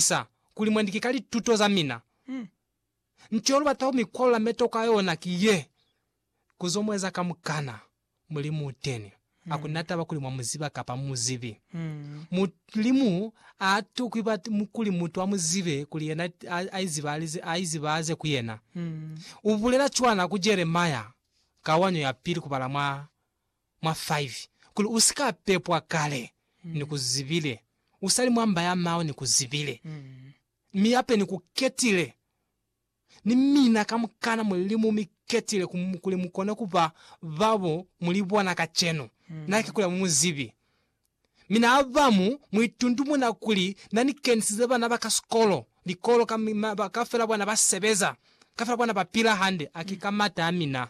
sa kuli mwendike ka lituto za mina. Nto yo lu bata ku mi kwalula meto ka yona ki ye, ku zo mu eza kamukana Mulimu u teni. Ha ku na taba kuli mwa mu ziba kapa mu mu zibi, Mulimu a tokwi kuli mutu a mu zibe kuli yena a izibahaze ku yena. U bulela cwana ku Jeremia ka wanyo ya pili ku bala mwa mwa 5, kuli u si ka pepwa kale ni ku zibile, u sa li mwa mba ya mao ni ku zibile, mi yape ni ku ketile. Ni mina kamukana Mulimu mi ketile ku, kuli mu kone ku ba ba bo mu li bona kacenu. Na ki kule mu mu zibi. Mi na bamu muitundumuna kuli na ni kenisize bana ba ka sikolo, likolo, ka, mi ma, ba, kafela bona ba sebeza, kafela bona ba pila hande. A ki ka mata a mina.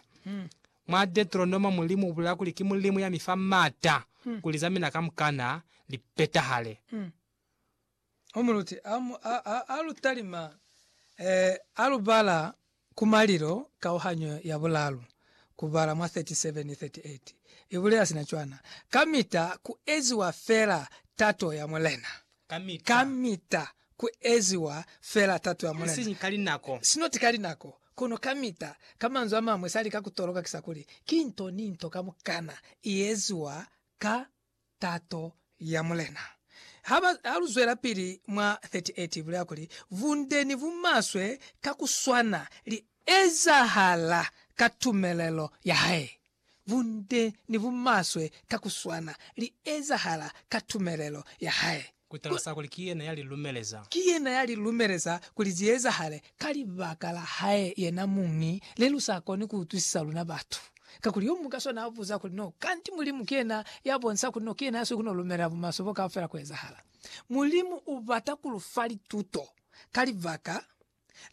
Mwa Deteronoma Mulimu ubulela kuli ki Mulimu ya mi fa mata kuli za mina kamukana li petahale. Umuluti a lu talima, a lu bala ku malilo kauhanyo ya bulalu ku bala mwa 37, 38 i bulela sina cwana, Kamita ku eziwa fela tato ya Mulena. Kamita ku eziwa fela tato ya Mulena. Isiñi ka linako. Sinoti ka linako, kono kamita. Ka manzwi a mañwi, sa lika ku toloka ki sa kuli, ki nto ni nto kamukana i eziwa ka tato ya Mulena. Ha ba, ha lu zwelapili mwa 38, ibulela kuli, Bunde ni bumaswe ka ku swana li ezahala ka tumelelo ya hae. Bunde ni bumaswe ka ku swana li ezahala ka tumelelo ya hae. Ku talasa kuli ki yena ya li lumeleza. Ki yena ya li lumeleza kuli zi ezahale. Ka libaka la hae yena muñi, le lu sa koni ku utwisisa luna batu. Kakuli yo muñwi ka swana a buza kuli, No kanti Mulimu ki yena ya bonisa kuli no ki yena ya swi ku no lumelela bumaswe bo kaufela ku ezahala? Mulimu u bata ku lu fa lituto ka libaka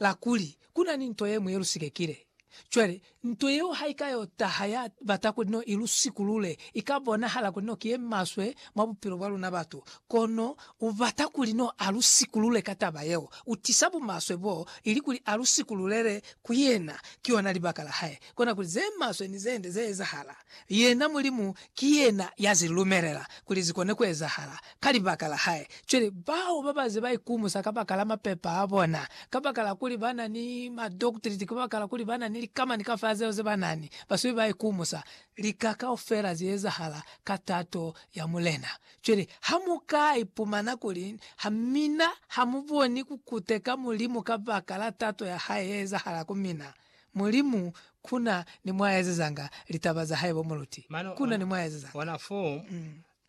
la kuli ku na ni nto ye ñwi ye lu sikekile. Cwale, nto yeo ha i ka yo taha ya bata kuli no i lu sikulule, i ka bonahala kuli no ki ye maswe mwa bupilo bwa luna batu. Kono u bata kuli no a lu sikulule ka taba yeo. U tisa bumaswe bo, ili kuli a lu sikululele ku yena. Ki yona libaka la hae. Kona kuli ze maswe ni ze nde ze ezahala. Yena Mulimu ki yena ya zi lumelela kuli zi kone ku ezahala ka libaka la hae. Cwale, bao ba ba ze ba ikumusa kabakala mapepa a bona, kabakala kuli ba na ni madoktiliti, kabakala kuli ba na ni likamani kafela zeo ze ba na ni, ba sube ba ikumusa. Lika kaufela zi ezahala ka tato ya Mulena. Cwale, ha mu ka ipumana kuli ha mina ha mu boni ku kuteka Mulimu kabakala tato ya hae ye ezahala ku mina, Mulimu ku na ni mwa ezezanga litaba za hae bo muluti. Mane Ku na ni mwa ezezanga. ona fo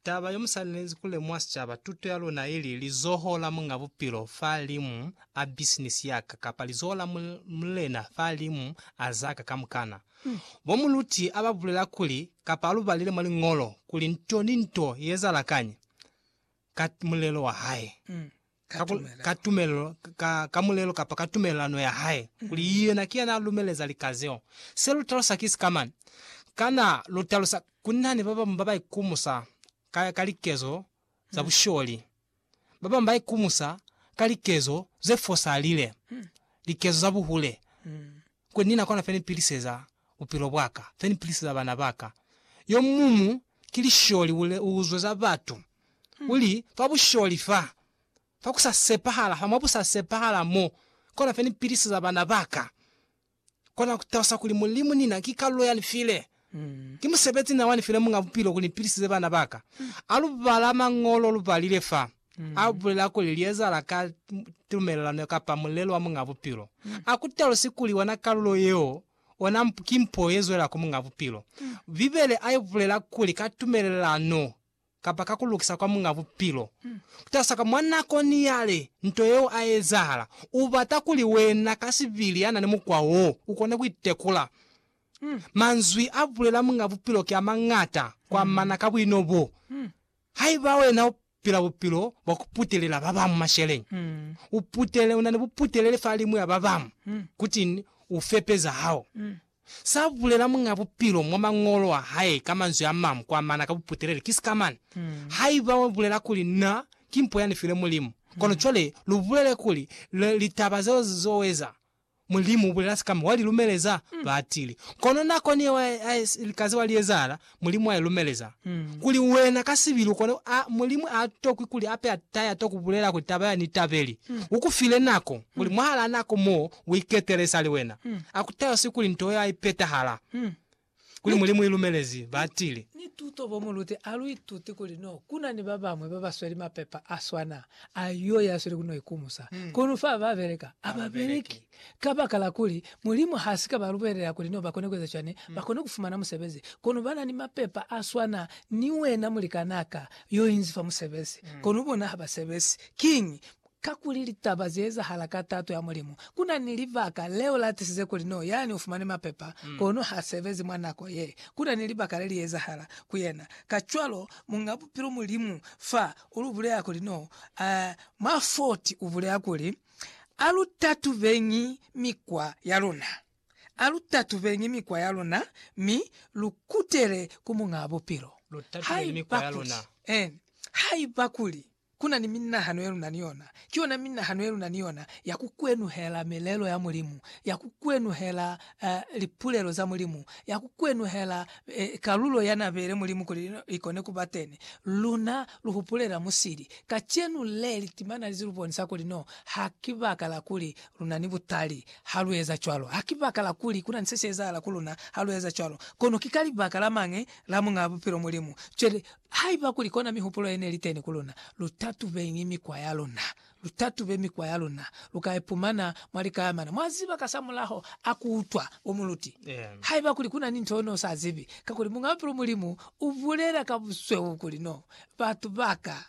taba yo mu swanelezi ku lemuha sicaba, tuto ya luna ili, lizoho la Muñ'a Bupilo fa limu a bisinisi ya ka, kapa lizoho la mu, mulena fa limu a za ka kamukana. Bo muluti a ba bulela kuli, kapa a lu balile mwa Liñolo, kuli nto ni nto i ezahala kañi ka mulelo wa hae. ka ku, ka tumelelo, ka, ka mulelo kapa ka tumelelano ya hae, kuli yena ki yana a lumeleza lika zeo. Se lu talusa ki sika mani? Kana lu talusa kuli na ni ba bamu ba ba ikumusa ka, ka likezo za busholi? Ba bamu ba ikumusa ka likezo ze fosalile, likezo za buhule. Kuli ni na kona fe ni piliseza bupilo bwa ka, fe ni piliseza bana ba ka. Yo mumu ki lisholi u uzwe za batu, u li, Fa busholi fa, fa ku sa sepahala fa, mwa bu sa sepahala mo, kona fe ni piliseza bana ba ka. Kona ku talusa kuli Mulimu ni na ki kalulo ya ni file. Ki musebezi na wa ni file Muñ'a Bupilo kuli ni pilisize bana ba ka. A lu bala Mañolo lu balile fa a bulela kuli li ezahala ka tumelelano kapa mulelo wa Muñ'a Bupilo. A ku talusi kuli ona kalulo yeo ona ki mpo ye zwela ku Muñ'a Bupilo. Bibele a i bulela kuli ka tumelelano kapa ka ku lukisa kwa Muñ'a Bupilo, kutasa kwa mwa nako ni yale nto yeo a ezahala, u bata kuli wena ka sibili ya na ni mukwa wo, u kone ku itekula. Manzwi a bulela Muñ'a Bupilo ki a mañata ku amana ka buino bo. Haiba wena u pila bupilo bwa ku putelela ba bañwi masheleñi, u putele, u na ni buputeleli fa limu ya ba bañwi, kutiñi? U fepe za hao. Sa bulela Muñ'a Bupilo mwa Mañolo a hae ka manzwi a mañwi kwa mana ka buputeleli ki sika mane. Haiba wa bulela kuli Na ki mpo ya ni filwe Mulimu, kono cwale lu bulele kuli litaba zeo zo eza, Mulimu u bulela sika mi wa li lumeleza batili. Kono nako ni yeo a si li kaze wa li ezahala, Mulimu a i lumeleza. Kuli wena ka sibi lukone a, Mulimu a tokwi kuli ape a taya to kubulela kuli taba ya ni tabeli. U ku file nako, kuli mwahalaa nako mo u iketele sali wena. A ku tayoswi kuli nto yeo a i petahala. Kuli Mulimu i lumelezi, ba tile. Ni tuto bo mu lute, a lu ituti kuli no kuna ni ba bamwe ba ba sweli mapepa a swana a yo ya sweli ku no ikumusa. Kono fa ba beleka, a ba beleki. Kabakala kuli Mulimu ha si ka ba lubelela kuli nibo ba kone ku eza cwani, ba kone ku fumana musebezi. Kono ba na ni mapepa a swana ni wena mulikanaa ka yo inzi fa musebezi, kono bona ha ba sebezi. Kiñi? Kakuli litaba ze ezahala ka tato ya Mulimu. Ku na ni libaka leo la tisize kuli no yani u fumane mapepa, kono ha sebezi mwa nako ye. Ku na ni libaka le li ezahala ku yena. Kacwalo, Muñ'a Bupilo Mulimu fa u lu bulela kuli no, mwa 40 u bulela kuli, Alutatubeñi mikwa yaluna. Alutatubeñi mikwa yaluna mi lukutele ku Muñaa Bupilo. Lutatubeñi mikwa yaluna. Eeni. Haiba kuli kuna ni minahano yeluna ni yona, ki yona minahano yeluna ni yona ya kukwenuhela milelo ya Mulimu, ya kukwenuhela lipulelo za Mulimu, ya kukwenuhela kalulo yanabeile Mulimu kuli ikone kuba teni, luna lu hupulela musili. Kacenu le, litimana li zilubonisa kuli no ha ki baka la kuli lu na ni butali ha lu eza cwalo. Ha ki baka la kuli ku na ni se si ezahala ku luna ha lu eza cwalo, kono ki ka libaka la mañi la Muñaa Bupilo, Mulimu. Cwale, haiba kuli kona mihupulo ye ne li teni ku luna, lu tatubeñi mikwa ya luna. lu tatube mikwa ya luna, lu ka ipumana mwa likayamana. Mwa ziba kasamulaho a ku utwa bo muluti, haiba kuli ku na ni nto yo no sa zibi, kakuli Muñ'a Bupilo Mulimu u bulela ka busweu kuli no batu ba ka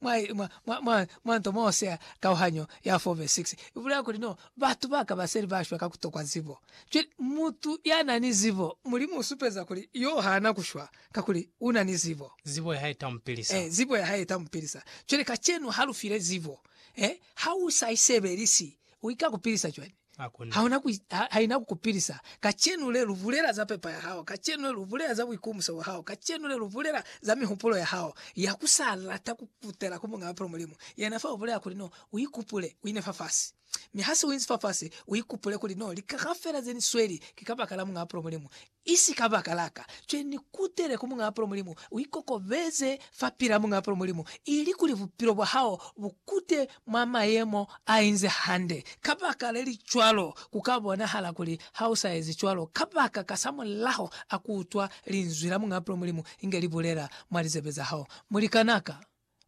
mwa, mwa, mwa, mwa, mwa nto mo sea kauhanyo ya 4 vesi 6, u bulela kuli no batu ba ka ba seli ba shwa ka ku tokwa zibo. Cwale, mutu ya na ni zibo, Mulimu u supeza kuli yo ha na ku shwa. Kakuli u na ni zibo. Zibo ya hae ta mu pilisa. Eh, zibo ya hae ta mu pilisa. Cwale kacenu ha lu file zibo, eh, ha u sa i sebelisi, i ka ku pilisa cwañi? Hakuna. Ha una ku, ha, ha ina ku ku pilisa. Kacenu le, lu bulela za pepa ya hao. Kacenu le, lu bulela za buikumuso bwa hao. Kacenu le, lu bulela za mihupulo ya hao ya ku sa lata ku kutela ku Muñ'a Mapilo, Mulimu. Yena fa u bulela kuli, No, u ikupule, u ine fafasi. Mi ha se u inzi fafasi, u ikupule kuli, No, lika kaufela ze ni sweli ki kabakala Muñ'a Mapilo, Mulimu. Isi kabakala ka cwe ni kutele ku Muñaa Palo Mulimu, uikokobeze fapilaa Muñaa Palo Mulimu, ili kuli bupilo bwa hao bukute mwa mayemo ainze hande. Kabaka lelicwalo, kuka bonahala kuli hausa ezi cwalo kabaka kasamulaho akuutwa Linzwi la Muñaa Palo Mulimu inge libulela mwa lizebe zahao. Mulikanaka!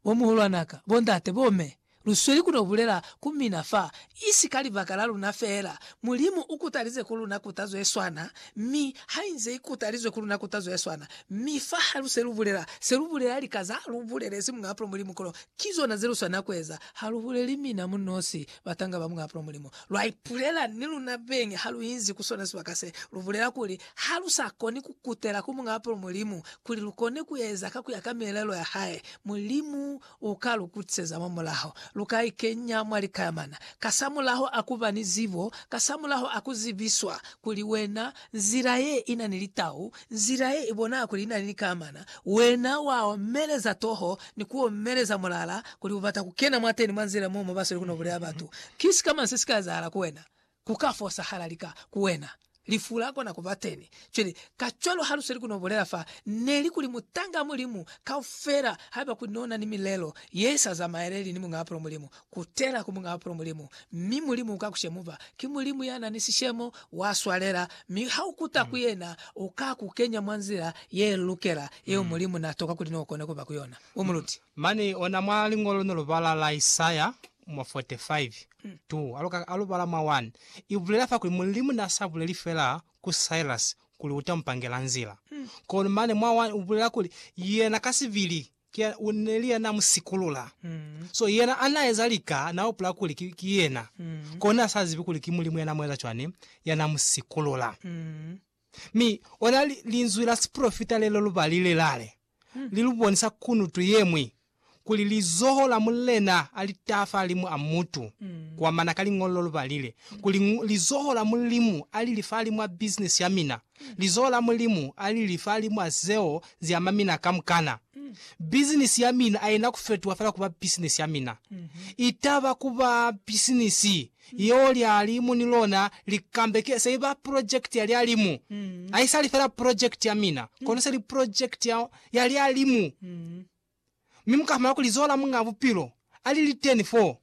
Bo muhulwana ka, bo ndate, bo me, lu sweli ku to bulela ku mina fa, i si ka libaka la luna feela. Mulimu u kutalize ku luna kutazo ye swana, mi ha inze i kutalizwe ku luna kutazo ye swana. Mi fa ha lu se lu bulela, se lu bulela lika za lu bulelezi Muñ'a Apulo Mulimu, kono ki zona ze lu swanela ku eza. Ha lu buleli mina mu nosi, batanga ba Muñ'a Apulo Mulimu. Lwa ipulela ni luna beñi ha lu inzi ku sona sibaka se, lu bulela kuli, Ha lu sa koni ku kutela ku Muñ'a Apolo Mulimu kuli lu kone ku eza ka ku ya ka mielelo ya hae, Mulimu u ka lu kutiseza mwa mulaho. Lu ka ikenya mwa likayamana kasamulaho a ku ba ni zibo, kasamulaho a ku zibiswa kuli wena nzila ye i na ni litau, nzila ye i bonaha kuli i na ni likayamana, wena wa omeleza toho ni ku omeleza mulala kuli u bata ku kena mwateni mwa nzila mo mo ba sweli ku no buleya batu. Ki sikamañi se si ka ezahala ku wena? Ku ka fosahala lika ku wena. Lifu la kona ku ba teni. Cwale, kacwalo ha lu sweli ku no bulela fa, ne li kuli mutanga Mulimu kaufela, haiba kuli no na ni milelo ye sa zamaeleli ni Muñaa Pulu Mulimu, kutela ku Muñaa Pulu Mulimu, mi Mulimu uka ku shemuba. Ki Mulimu ya na ni sishemo, wa swalela, mi ha u kuta ku Yena, U ka ku kenya mwa nzila ye lukela, yeo Mulimu na toka kuli no kone ku ba ku yona. U muluti. Mane ona mwa Liñolo no lu bala la Isaya, mwa 45, 2 aluka alubala mwa 1, ibulela fa kuli Mulimu na sa buleli fela ku Cyrus kuli uta mupangela nzila, kono mane mwa 1 ubulela kuli yena ka sibili ki neli ya na musikulula. So yena ana eza lika na upula kuli ki, ki yena, kono na sa zibi kuli ki Mulimu ya na mueza cwani, ya na musikulula. Mi ona li, linzwi la sipolofita lelo lubali le lale, li lu bonisa kunutu ye ñwi, kuli lizoho la Mulena a li taha fahalimu a mutu, kuamana ka Liñolo lu balile, kuli, Lizoho la Mulimu a li li fahalimu a bisinisi ya mina, lizoho la Mulimu a li li fahalimu a zeo zi ama mina kamukana. Bisinisi ya mina a i na ku fetuha fela ku ba bisinisi ya mina. I taba ku ba bisinisi Yeo lyali mu ni lona likambeke se iba project ya lyalimu. Haisali fela project ya mina, kono se li project ya, ya lyalimu. Mi muka fumana kuli zoho la Muñaa Bupilo ali liteni foo.